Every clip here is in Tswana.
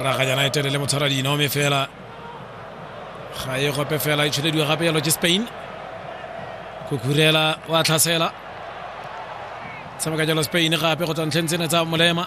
raga jana e telele motshwara dino me fela ga e gope fela e tšhelediwa gape yalo ke spain kukurela wa tlhasela tshameka jalo spain gape go tswa ntlheng tsene tsa molema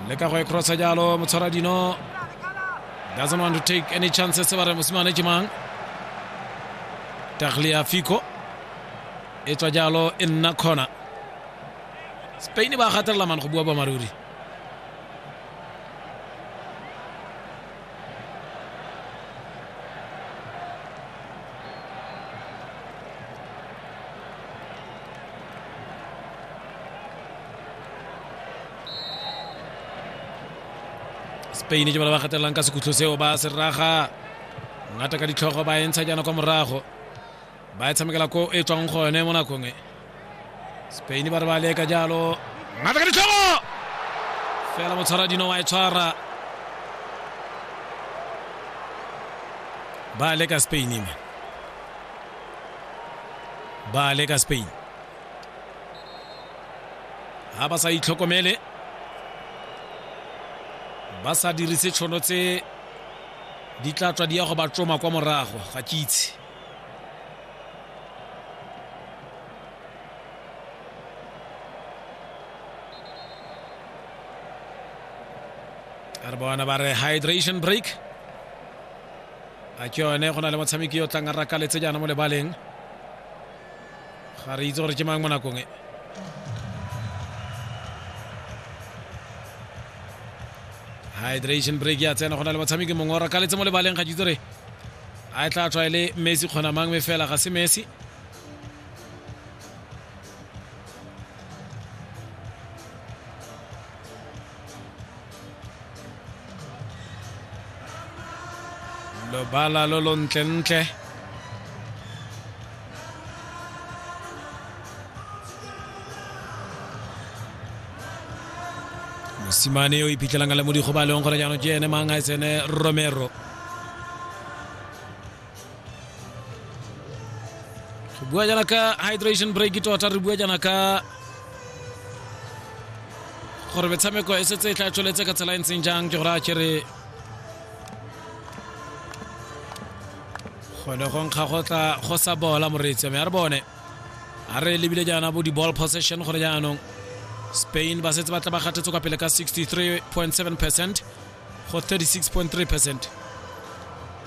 le ka go e crossa jalo motshwara dino doesn't want to take any chances ba re mosimane ke mang taglia fico e tswa jalo e nna khona spain ba gatelela mane go bua boamaruri spain ke bana ba gatelelang ka sekhutlho seo ba se raga ngata ka ditlhogo ba entsha jaana kwa morago ba e tshamekela ko e tswang go yone mo nakong e spain ba re ba leka jalo ngata ka ditlhogo fela motshwara dino wa e tshwara ba leka spain ma ba leka spain ga ba sa itlhokomele ba sa dirise tshono tse di tla tswa di ya go ba tsoma kwa morago ga kitse a re bona ba re hydration break a ke yone go na le motshameki yo tlang a rakaletse jaana mo lebaleng ga re itse gore ke mang mo nakong e hydration break ya tsena go na le motshameki mongwe o rakaletse mo lebaleng ga ke itse gore a e tla tswa e le messi kgona mang me fela ga se messi lobala lo lo ntlentle mosimane yo iphitlhelang a le modigo ba leng gore jaanong ke ene mang a e tsene romero Ribuaja naka hydration break tota Ribuaja naka gore metshameko e setse e tla tsweletse ka tsela e ntseng jang ke gore a kere gone go nkga go tla go sa bola moreetsi mme a re bone a re lebile jaana bo di-ball possession gore jaanong spain ba setse ba tla ba kgathetse kwa pele ka 63.7 percent go 36.3 percent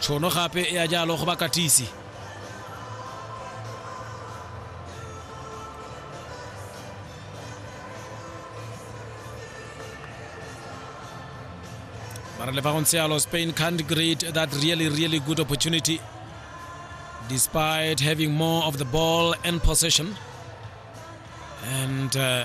tshono gape e ya jalo go bakatisi mara le fa go ntse yalo spain can't create that really really good opportunity despite having more of the ball and possession and uh,